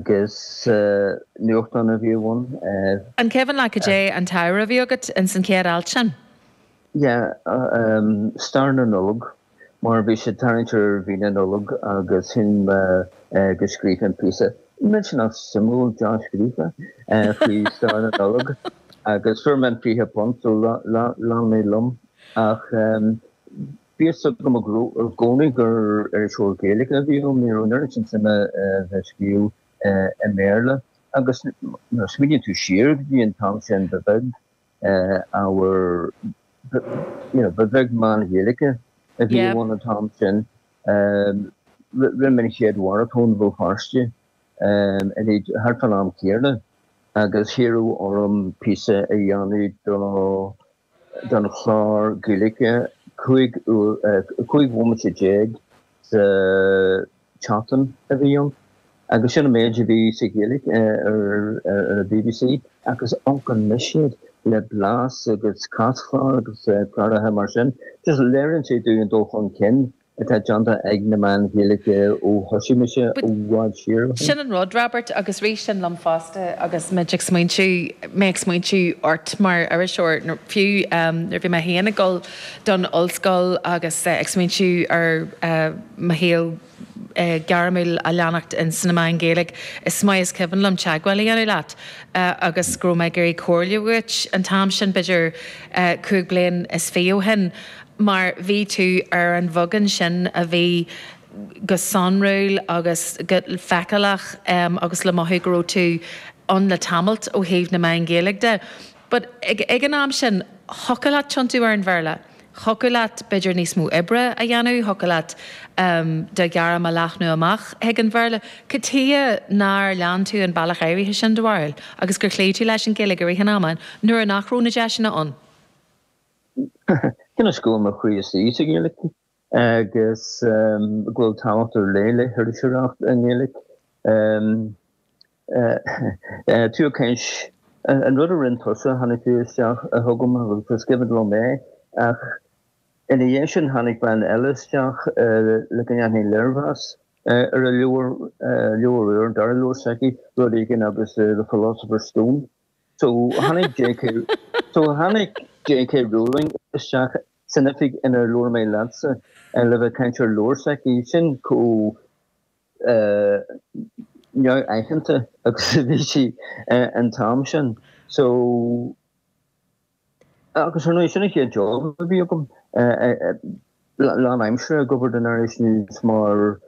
Agus nuachtán a bhí ann. An cuimhin leat cad é an t-ábhar a bhí agat ins an chéad alt sin? Yeah, stair na Nollag, mar bhí sé ag tarraingt ar mhí na Nollag agus shíl mé go scríobfainn píosa millteanach suimiúil dea-scríofa faoi stair na Nollag agus fuair mé an fiche punt, so lean mé liom ach. Bhí fhios agam i gcónaí gur iriseoir Gaeilge a bhí ionam, ní raibh an oiread sin suime agam a bheith ag scríobh i mBéarla, agus nuair a smaoiníonn tú siar go dtí an t-am sin, ba bheag ábhar, you know, ba bheag meáin Ghaeilge a bhí ann an t-am sin. Rinne mé an chéad mharatón Bhéal Feirste thart fán am céanna, agus iarradh orm píosa a dhéanamh do don chlár Gaeilge 15 bhomaite déag sa tseachtain a bhí ann agus sin an méid a bhí sa Ghaeilge ar an bbc agus amharc anois air le blas agus caschlár agus cláracha mar sin just léiríonn sé dúinn an dul chun cinn atá déanta ag na meáin Ghaeilge ó thosaigh mise i bhfad siar ó shin. Sin an rud, Robert, agus rith sin liom fosta agus muid ag smaointiú, mé ag smaointiú ort mar iriseoir, fiú nuair a bhí mé féin ag dul don ollscoil agus ag smaointiú ar mo shaol gairmiúil a leanacht sna meáin Ghaeilge, is maith is cuimhin liom teagmháil a dhéanamh leat agus go raibh mé ag iarraidh comhairle uait an t-am sin, b'fhéidir cúig bliain is fiche ó shin. mar bhí tú ar an bheagán sin a bhí go sonrúil agus go feiceálach agus le mothú go raibh tú ann le tamallt ó thaobh na meáin Ghaeilge de but ag an am sin thiocfadh leat tiontú ar an Bhéarla, thiocfadh leat b'fhéidir níos mó oibre a dhéanamh, thiocfadh leat do ghairm a leathnú amach chuig an Bhéarla. Cad chuige nár lean tú an bealach áirithe sin do bharúil agus gur chloígh tú leis an Ghaeilge i rith an ama nuair nach raibh na deiseanna ann? Cionn is go mba é mo chroí is é i nGaeilic agus go bhfuil tábhacht ar leith le hiriseoireacht i nGaeilic. Tuigeann tú, cionn is, an rud a rinne tusa, tháinig tú isteach chugam agus d'agallaigh tú mé ach ina dhiaidh sin tháinig bean eile isteach le go ndéanfainn léirmheas ar a leabhar úr, dara leabhar s'aici, rud éigin agus The Philosopher's Stone. So tháinig JK so tháinig JK Rowling isteach san oifig inar labhair mé leatsa le bheith ag caint ar an leabhar s'aici, sin chomh neamhaitheanta agus a bhí sí an t-am sin. So. Agus ar ndóigh, sin an chéad job a bhí agam, lán aimsire ag obair don Irish News mar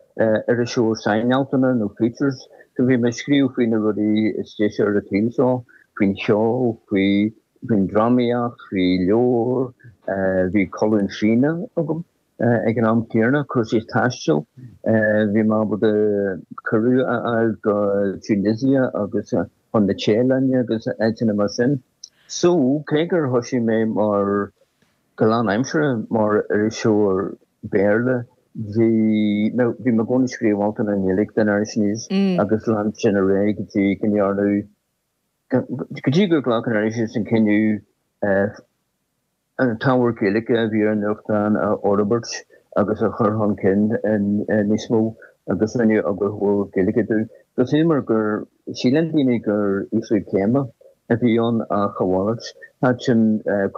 iriseoir sainealtanna nó features, so bhí mé ag scríobh faoi na rudaí is deise ar an tsaol seo, faoin cheol, faoin drámaíocht, faoi leabhair, bhí colún fíona agam ag an am céanna, cúrsaí taistil, bhí mé ábalta cuireadh a fháil go Tunisia agus chun na Téalainne agus áiteanna mar sin. So, cé gur thoisigh mé mar, go lán-aimseartha, mar iriseoir Béarla, bhí mé, bhí mé i gcónaí ag scríobh altanna i nGaeilge don Irish News agus lean sin ar aghaidh go dtí go ndearnadh, go dtí gur ghlac an Irish News an cinneadh, an t-ábhar Gaeilge a bhí ar an nuachtán a fhorbairt agus a chur chun cinn níos mó agus rinneadh eagarthóir Gaeilge domh. Agus ansin mar gur shíl daoine gur ísliú céime a bhí ann ach a mhalairt, thaitin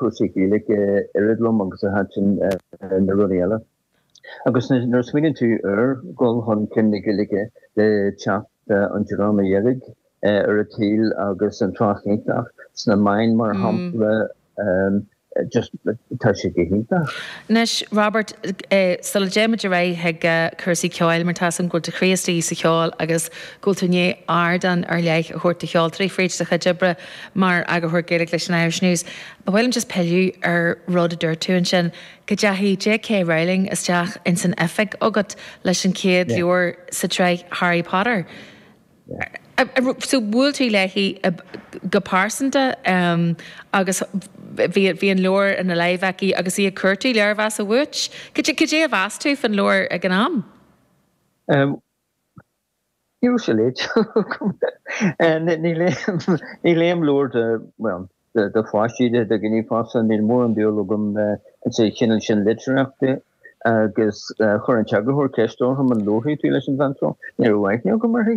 cúrsaí Gaeilge oiread liom agus a thaitin na rudaí eile. Agus nuair a smaoiníonn tú ar dhul chun cinn na Gaeilge le teacht an Dreama Dheirg ar an tsaol agus an trácht iontach sna meáin mar shampla, just tá sé go hiontach. Anois, Robert, sula dtéimid ar aghaidh chuig cúrsaí ceoil, mar tá a fhios agam go bhfuil do chroí istigh sa cheol agus go bhfuil tú i ndiaidh ardán ar leith a thabhairt do cheoltóirí fríd do chuid oibre mar eagarthóir Gaeilge leis an Irish News, ba mhaith liom just pilleadh ar rud a dúirt tú ansin. go dteachaigh J. K. Rowling isteach ins an oifig agat leis an chéad leabhar sa tsraith Harry Potter. So bhuail tú léi go pearsanta agus bhí an leabhar ina láimh aici agus í ag cuartú léirmheas uait. Cad é a mheas tú faoin leabhar ag an am? Usually, ní léim leabhair de, bhuel, de pháistí de do ghníomhachas, níl mórán dúil agam sa chineál sin litríochta agus chuir an t-eagarthóir ceist orm an labharfaidh tú leis an bhean seo, ní raibh aithne agam uirthi.